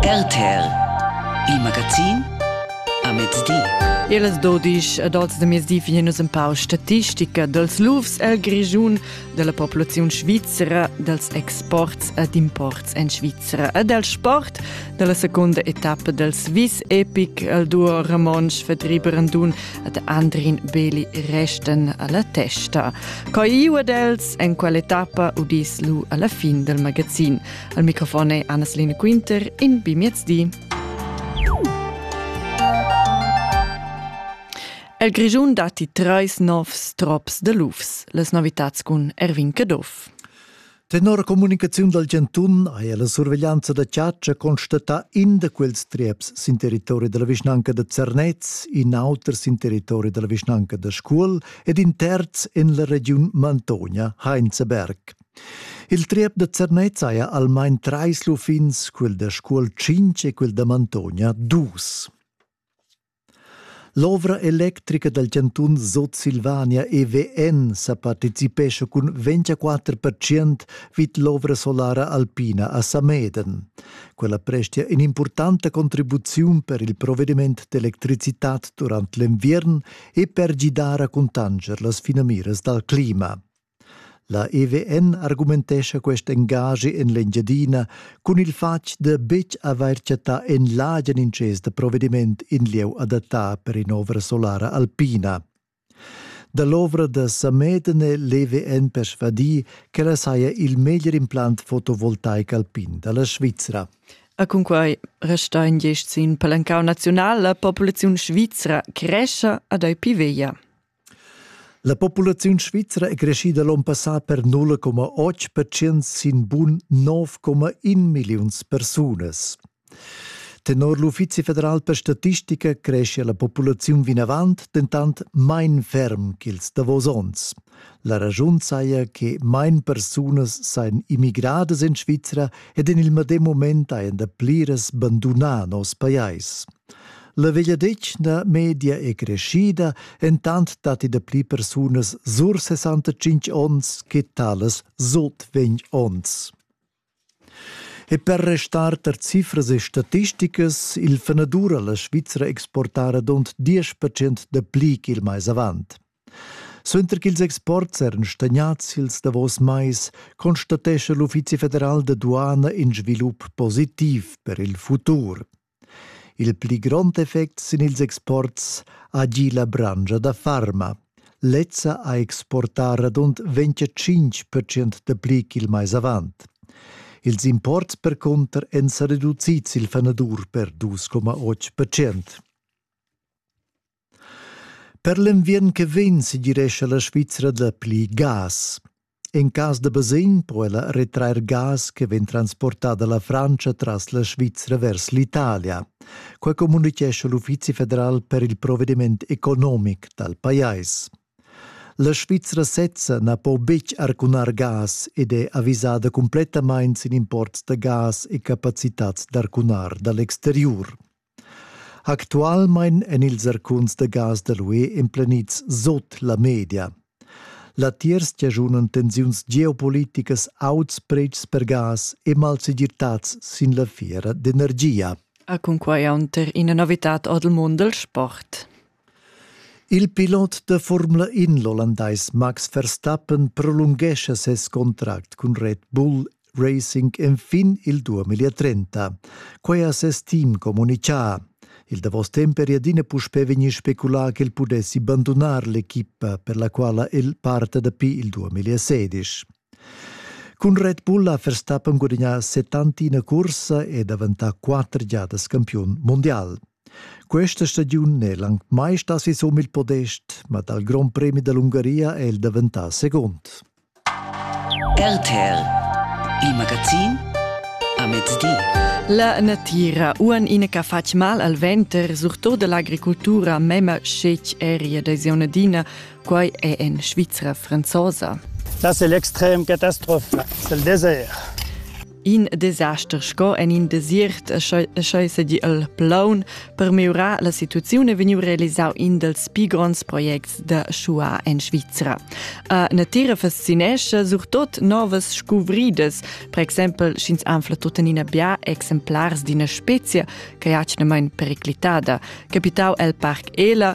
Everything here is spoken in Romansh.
RTL Il magazin a mezdi. Ils dodisch adults da mezdi vegnin nus empau statistica dals lufs el Grischun, della populazione svizzera, dels exports ed imports en Svizzera e del sport della seconda etappa del Swiss Epic el duo Ramonsch Vertrieb Randun ad Andrin Beli resten alla testa. Coi ua dels en quale tappa udis lu alla fin del magazin. Al microfon è Anna-Selina Quinter in Bimiezdi. El Grischun datti treis novs trops de lufs, les novitats cun Erwin Caduff. Tenor comunicaziun dal Giantun haja la surveglianza da chatscha constatà in da quels trieps sin territori da la vischnanca da Zernez, in auter sin territori da la vischnanca da Scuol ed in terz en la regiun Mantogna, Heinzeberg. Il triep da Zernez haja almain trais lufins, quel da Scuol 5 e quel da Mantogna dus. L'ovra electrica dal chantun Sutsilvania EVN sa participescha cun 24 percent vid l'ovra solara alpina a Sameden. Quella prestia in'impurtanta contribuziun per il provvediment d'electricitad durant l'enviern e per gidar a contanger las finamiras dal clima. La EVN argumentescha quest engaschi en l'Engiadina cun il fatg da betg avair chattà en l'agen intschess da provediment in lieu adattà per in'ovra solara alpina. Da l'ovra da Sameden è l'EVN persvadì ch'ella saja il meglier implant fotovoltaic alpin da la Svizra. E cunquai resta in gest sin palancau naziunal la populaziun svizra crescha ad ei pi veglia. La populaziun svizra è creschida l'onn passà per 0,8 percent sin bun 9,1 milliuns persunas. Tenor l'Uffizi federal per statistica cresce la populaziun vinavant dentant main ferm ch'ils davos onns. La raschun saja che main persunas sajan immigradas en Svizra ed en il medem moment hajan da pliras bandunà noss pajais. La vegliadetgna media è creschida, entant datti dapli persunas sur 65 onns che talas sot 20 onns. E per restar tar cifras e statisticas, il fenadur a la Svizra exportara dont 10% da pli ch'il mais avant. Suenter ch'ils exports eran stagnads ils davos mais, constatescha l'Uffizi federal da duana in svilup positiv per il futur. Il pli grond effect sin ils exports ha gì la branscha da farma. Lezza ha exportà radund 25% dapli ch'il mais avant. Ils imports percunter èn sa reducids il fanadur per 2,8%. Per l'enviern che vegn segirescha la Svizra dapli gas. En cas da basegn po ella retrair gas che vegn transportada la Francia tras la Svizra vers l'Italia. Quai communitgescha l'Uffizi federal per il provvediment economic dal pajais. La Svizra sezza na po betg arcunar gas ed è avisada cumplettamain sin imports da gas e capacitads d'arcunar da l'exteriur. Actualmein en ils zarcuns da gas da l'UE emplenids sot la media. Latiers giajunan tensiuns geopoliticas auts pretschs per gas e malsegirtads sin la fiera d'energia. A cunquai aunter ina novitad ord il mund del sport. Il pilot da Formula In l'ollandais Max Verstappen prolunghescha ses contract cun Red Bull Racing enfin il 2030. Quai ha ses team communitgà. Il davos temp eri adina puspè vegnì speculà ch'el pudessi bandunar l'equipa per la quala el parta dapi il 2016. Cun Red Bull ha Verstappen gudagnà 71 cursa e daventà quatter giadas campiun mondial. Questa stagiun n'è anc mai stà sisum il podest, ma dal Grond Premi dall'Ungaria è el daventà segund. RTL, il magazin a mezdi. La natira uan ina che fatg mal al venter, surtut dall'agricoltura, mema scetg eri da zonadina, quai è en Svizra franzosa. Das ist l'extrem Katastrophe, c'est le désert. In desaster sco en in desiert sch'ei sedi el plaun per miurar la situaziun e vegniu realisau in dels pi gronds projects da Schua en Svizra. A natira fascinescha surtot novas scuvridas, per exempel sch'ins anfla tuttenina bia exemplars d'ina specia che jatschna mein periclitada, capitau el Parc Ela